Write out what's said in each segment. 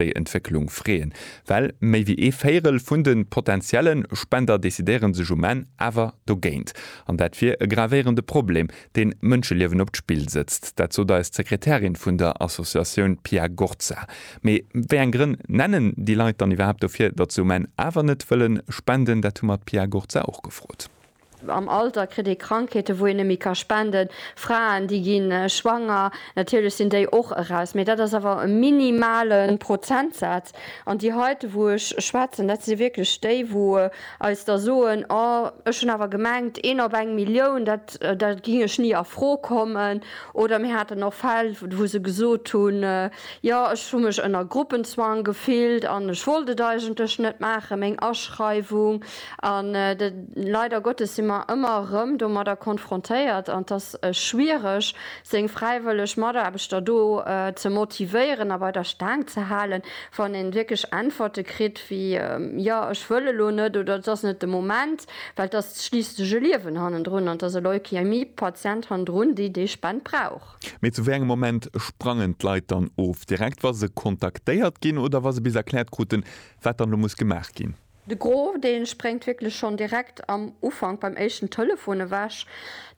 déi Entwécklung freeën, well méi wéi ee Véirel vun de potentiellen Spender decidéieren sech um Enn awer dogéint. An dat wier e gravéierende Problem, deen Mënscheliewen op d'Spill sëtzt. Dat sot eis d'Sekretärin vun der Associatioun Pia Gorza. Mee wéi eng Grënn nennen déi Leit dann iwwerhaapt dofir, datt se um Enn awer net wëllen spenden? Dat hu mer d'Pia Gorza och gefrot. Am Alter kritt ee Krankheeten, wou een net méi ka spenden. Fraen, déi gi schwanger, natierlech sinn déi och eraus, mee dat ass awer e minimale Prozentsaz. An déi heite, wou ech schwätzen, dat si wierklech déi, wou eis da soen, Oh, ech hunn awer gemengt, een op eng Millioun, da géing ech ni a Fro kommen. Oder mir haten och Fäll, wou se gesot hunn, Jo, ech hu mech ënner Gruppenzwang gefillt an ech wollt et eigentlech net maachen, meng Aschreiwung. An leider Gottes si mer ëmmer erëm domadder konfrontéiert, an et ass schwiereg, seng fräiwëlleg Mataarbechter do ze motivéieren a bei der Staang ze halen, wann ee wierklech Äntwerte kritt wéi, Jo, ech wëll elo net oder et ass net de Moment. Well et ass schliisslech e Liewen hannendrun an et ass e Leukämie-Patient hannendrun, déi déi Spend brauch. Mee zu wéi engem Moment sprangen d'Leit dann of? Direkt, wa se kontaktéiert ginn oder wa se bis erkläert kruten, wat dann elo muss gemaach ginn? De Gros dee spréngt wierklech schonn direkt am Ufank beim éischten Telefon ewech.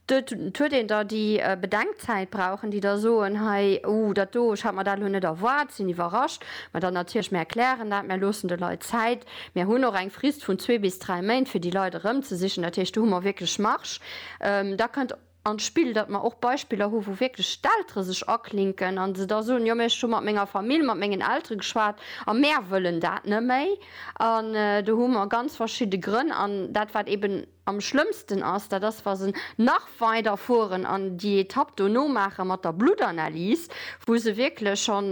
Et huet een da déi Bedenkzäit brauchen, déi da soen, hei, uh, dat do, ech hat mer dat elo net erwaart, sinn iwwerrascht. Mä dann natierlech, mir erklären dat, mir loossen de Leit Zäit, mir hunn och eng Frist vun zwee bis dräi Méint, fir déi Leit erëmzesichen. Dat heescht, do hu mer wierklech Marge. Da kënnt. an d'Spill, datt mer och Beispiller hu wou wierklech d'Eltere sech aklinken a se da soen, jo mä ech hu mat menger Famill, mat mengen Eltere geschwat a mär wëllen dat net méi. An do hu mer ganz verschidde Grënn. An dat wat eben am schlëmmsten ass, dat ass wa se nach weider fueren an déi Etapp dono maache mat der Bluttanalys, wou se wierklech schonn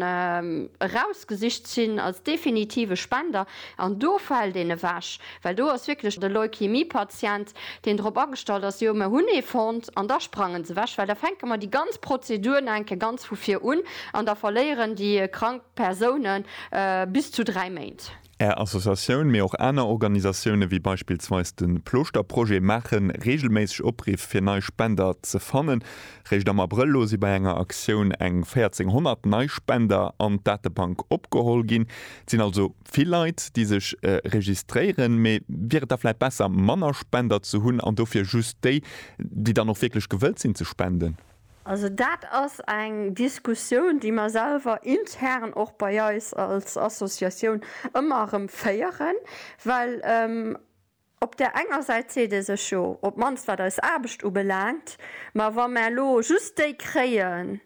erausgesicht sinn als definitive Spender an do fält een ewech. Well do ass wierklech e Leukämie-Patient, deen drop agestallt ass, jo, mer hunn ee fonnt, an da sprangen se ewech, well da fänke mer déi ganz Prozedur nach eng Kéier ganz vu vir un an da verléieren déi krank Persoune bis zu dräi Méint. Är Associatioun, mee och aner Organisatioune wéi beispillsweis de Plooschterprojet maache reegelméisseg Opriff fir nei Spender ze fannen. Réischt am Abrëll elo si bei enger Aktioun eng 1.400 nei Spender an d'Datebank opgeholl ginn. Et sinn also vill Leit déi sech registréieren, mee wier et da vläit besser manner Spender ze hunn an dofir just déi, déi dann och wierklech gewëllt sinn ze spenden? Also dat ass eng Diskussioun déi mer selwer intern och bei eis als Associatioun ëmmer erëm féieren, well Op där enger Säit seet ee sech jo, op d'mannst wat eis Aarbecht ubelaangt, ma wa mer elo just déi kréien,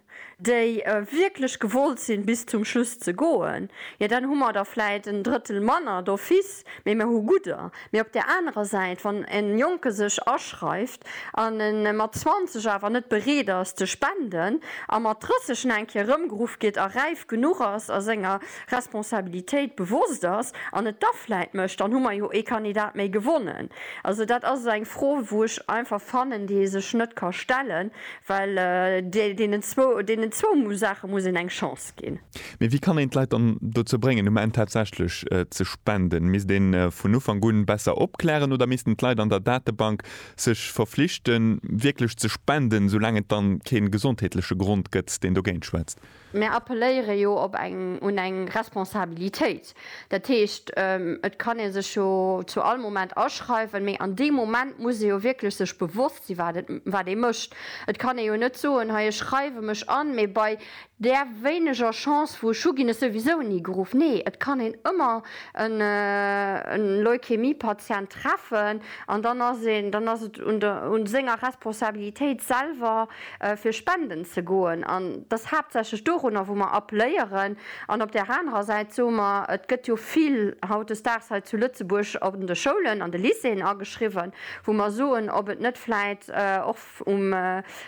déi wierklech gewollt sinn, bis zum Schluss ze goen, jo dann hu mer der vläit en Drëttel manner d'office, mee mer hu gudder. Mee op där anerer Säit, wann e Jonke sech aschreiw, an en mat 20 awer net bereet ass ze spenden a mat 30 en eng Kéier erëmgeruff gétt a räif genuch ass a senger Responsabilitéit bewosst ass an et da vläit mécht, dann hu mer jo ee Kandidat méi gewonnen. Also dat ass eng Fro wou ech einfach fannen, déi ee sech net ka stellen, well deenen zwou Saache muss een eng Chance ginn. gestoppt ginn. Mee wéi kann een d'Leit dann dozou bréngen, um Enn tatsächlech ze spenden? Misst ee vun Ufank un besser opklären oder missten d'Leit an der Datebank sech verflichten, wierklech ze spenden, esoulaang et da kee gesondheetleche Grond gëtt, deen dogéint schwätzt? Mär appelléiere jo op eng, un eng Responsabilitéit. Dat heescht, et kann ee sech jo zu all Moment aschreiwen, mee an deem Moment muss ee jo wierklech sech bewosst sinn, wat ee mécht. Et kann ee jo net soen, hei ech schreiwe mech an, mee bei Där wéineger Chance vu Schuh ginn ech souwisou ni geruff. Nee, et kann een ëmmer e Leukämie-Patient treffen an dann ass een, dann ass et un der, un senger Responsabilitéit selwer fir spenden ze goen an et ass haaptsächlech dorunner wou mer appléieren. An op där anerer Säit soe mer, et gëtt jo vill hautdesdaags hei zu Lëtzebuerg an de Schoulen, an de Lycéeën ageschriwwen, wou mer soen, ob et net vläit och, um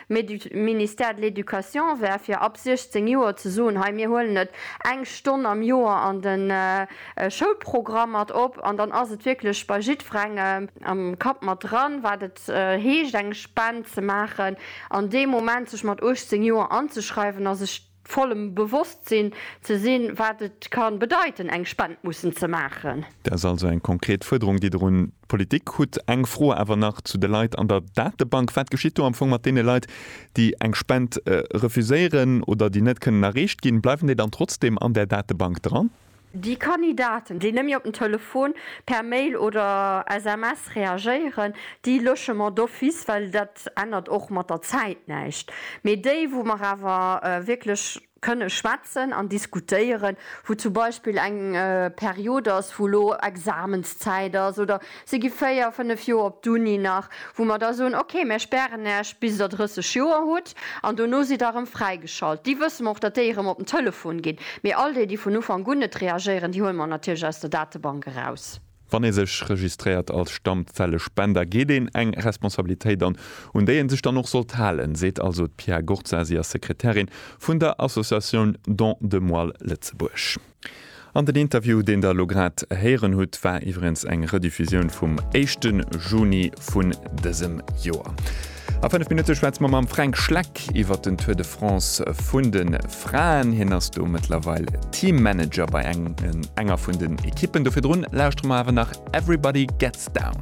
Ministère de l'Education wär, fir ab 16 Joer ze soen, hei mir huelen et eng Stonn am Joer an de Schoulprogramm mat op. An dann ass et wierklech bei jiddwerengem am Kapp mat dran, wat et heescht, eng Spend ze maachen. An dee Moment sech mat 18 Joer anzeschreiwen ass, ech. vollem Bewosstsinn ze sinn, wat et ka bedeiten, eng Spend mussen ze maachen. Dat ass also eng konkret Fuerderung, déi Der un d'Politik hutt. Eng Fro awer nach zu de Leit an der Datebank. Wat geschitt do am Fong mat deene Leit, déi eng Spend refuséieren oder déi net kënnen erreecht ginn? Bleiwen déi dann trotzdem an där Datebank dran? Déi Kandidaten, déi nëmme op den Telefon, per Mail oder SMS reagéieren, déi Logement d'office, well dat ännert och mat der Zäit näischt. Mee déi, wou mer awer wierklech kënne schwätzen an diskutéieren, wou zum Beispill eng Period ass, wou elo Examenszäit ass oder Si gi véier, fënnef Joer op d'Uni nach, wou mer da soen, okay, mär spären Äech bis Der 30 Joer hutt an dono sidd Der erëm fräigeschalt. Déi wësse mer och, datt déi erëm op den Telefon ginn. Mee all déi, déi vun Ufank un net reagéieren, déi huele mer natierlech aus der Datebank eraus. Wann ee sech registréiert als Stammzellespender, geet een eng Responsabilitéit an, un déi ee sech dann och sollt halen, seet also d'Pia Gurza. Si ass Sekretärin vun der Associatioun Don de Moelle Lëtzebuerg. An den Interview, deen der elo grad héieren hutt, war iwwerens eng Rediffusioun vum éischte Juni vun dësem Joer. A 5 Minutte schwätze mer mam Fränk Schleck iwwer den Tour de France vun de Fraen. Hien ass do mëttlerweil Teammanager bei enger vun den Ekippen. Do virdrun lauschtere mer awer nach Everybody Gets Down.